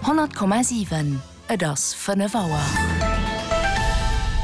100,7 Et ass 5 Auer.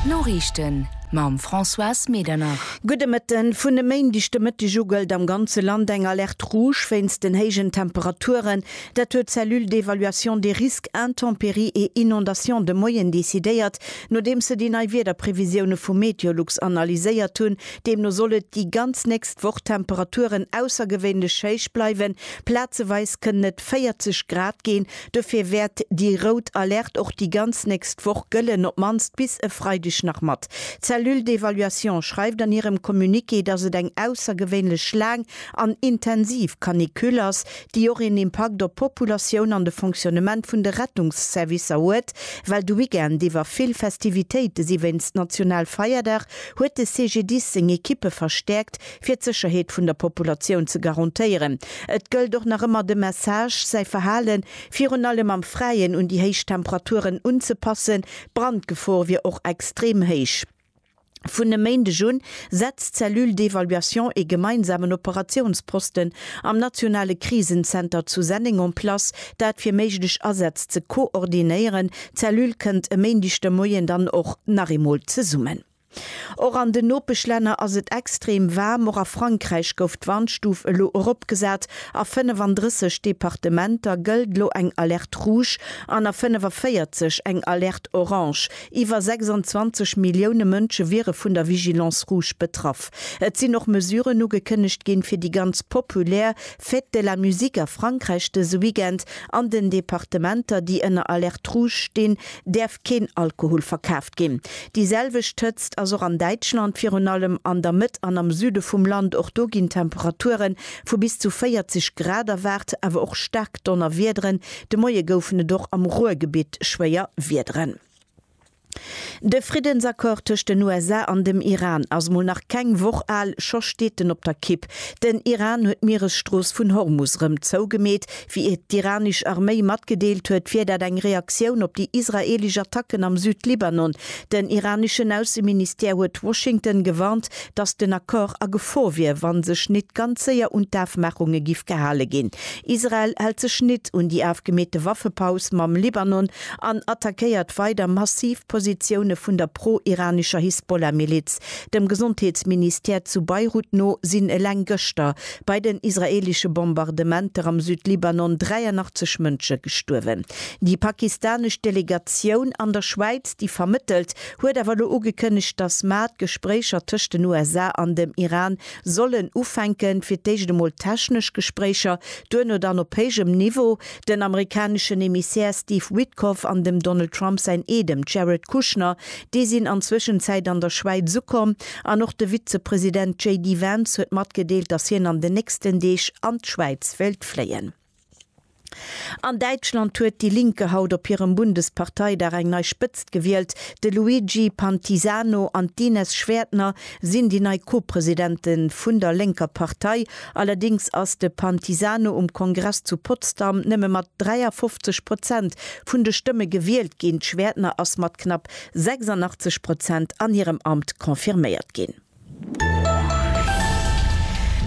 D'Noriichten mam Françoise Medernach. Gudde Mëtten. Vun e Méindeg de Mëtteg u gëllt am ganze Land eng Alerte rouge wéinst den héijen Temperaturen. Dat huet d'Cellule d'évaluation des risques intempéries et inondations de Moien decidéiert, nodeems se déi nei Wiederprevisioune vu Meteolux analyséiert hunn. Deemno soll et déi ganz nächst Woch Temperaturen aussergewéinlech héich bleiwen, Plazeweis kënnen et 40 Grad ginn, dofir wäert déi rout Alerte och déi ganz nächst Woch gëllen, op d'mannst bis e Freideg nach mat. D'Cellule d'évaluation schreift an hirem Communiqué, dass et eng aussergewéinlech laang an intensiv Canicule ass, déi och een Impakt op d'Populatioun an de Fonctionnement vun de Rettungsservicer huet, well de Weekend iwwer vill Festivitéite si. Wéinst Nationalfeierdag huet de CGDIS seng Ekippe verstäerkt. fir d'Sécherheet vun der Populatioun ze garantéieren. Et gëllt och nach ëmmer de Message, säi Verhale virun allem am Fräien un déi héich Temperaturen unzepassen. D'Brandgefor wier och extrem héich. Vun e Méindeg un setzt d'Cellule d'évaluation ee gemeinsamen Operatiounsposten am nationale Krisenzenter zu Senneng en place, dat fir méiglech Asätz ze koordinéieren. D'Cellule kënnt e Méindeg de Moien dann och nach eemol zesummen. Och an den Nopeschlänner ass et extrem waarm. Och a Frankräich gouf d'Warnstuf elo eropgesat. A 35 Departementer gëllt elo eng Alerte rouge an a 45 eng Alerte orange. Iwwer 26 Millioune Mënsche wiere vun der Vigilance rouge betraff. Et sinn och Mesuren ugekënnegt ginn, fir déi ganz populär Fête de la musique a Frankräich dëse Weekend an den Departementer, déi ënner Alerte rouge stinn, däerf keen Alkohol verkaaft ginn. Déi selwecht Hëtzt ass och an Däitschland, virun allem an der Mëtt an am Süde vum Land. Och do ginn Temperature vu bis zu 40 Grad erwaart, awer och staark Donnerwiederen. De Moie goufen et och am Ruhrgebitt schwéier Wiederen. De Friddensaccord tëscht den USA an dem Iran ass mol nach keng Woch al, scho steet en op der Kipp. Den Iran huet d'Mieresstrooss vun Hormus rëm zougemeet, Wéi et d'iranisch Arméi matgedeelt huet, wier dat eng Reaktioun op déi israeelesch Attacken am Südlibanon. Den iraneschen Ausseministère huet Washington gewarnt, datt den Accord a Gefor wier, wa sech nit ganz séier un d'Afmaachunge giff gehale ginn. Israel hält sech nit un déi afgemeete Waffepaus mam Libanon an attackéiert weider massiv Positioune vun der pro-iranescher Hisbollah-Miliz. Dem Gesondheetsministère zu Beirut no sinn eleng gëschter Bei den israeelesche Bombardementer am Südlibanon 83 Mënsche gestuerwen. Déi pakistanesch Delegatioun an der Schwäiz, déi vermëttelt, huet awer elo ugekënnegt, datt mar d'Gespréicher tëscht den USA an dem Iran sollen ufänken, fir d'éischt emol technesch Gespréicher, duerno dann op héijem Niveau. Den amerikaneschen Emissär Steve Witkoff an dem Donald Trump säin Eedem Jared Kushner, déi sinn an Zwëschenzäit an der Schwäiz ukomm an och de Vizepresident JD Vance huet matgedeelt, datt hien an den nächsten Deeg an d'Schwäiz wéilt fléien. An Däitschland huet déi Linke haut op hirem Bundesparteidag eng nei Spëtzt gewielt, de Luigi Pantisano an d'Ines Schwerdtner sinn déi nei Co-Presidente vun der lénker Partei, allerdéngs ass de Pantisano um Kongress zu Potsdam nëmme mat 53 Prozent vun de Stëmme gewielt ginn, d'Schwerdtner ass mat knapp 86 Prozent an hirem Amt confirméiert ginn.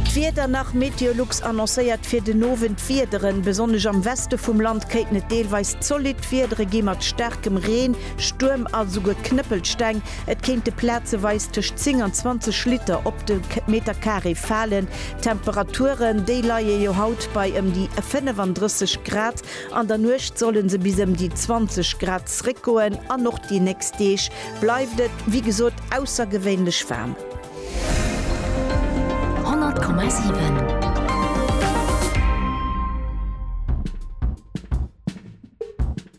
D'Wieder nach, Meteolux annoncéiert fir den Owend Wiederen, besonnesch am Weste vum Land kéinten et deelweis zolidd Wiedere gi mat staarkem Reen, Stuerm a souguer Knëppelsteng. Et kéinte plazeweis tëscht 10 an 20 Liter op de Meter Carré falen. D'Temperaturen, déi leie jo haut bei ëm déi 35 Grad, an der Nuecht solle se bis ëm déi 20 Grad zréckgoen an och déi nächst Deeg bleift et, wéi gesot, aussergewéinlech waarm. 100,7.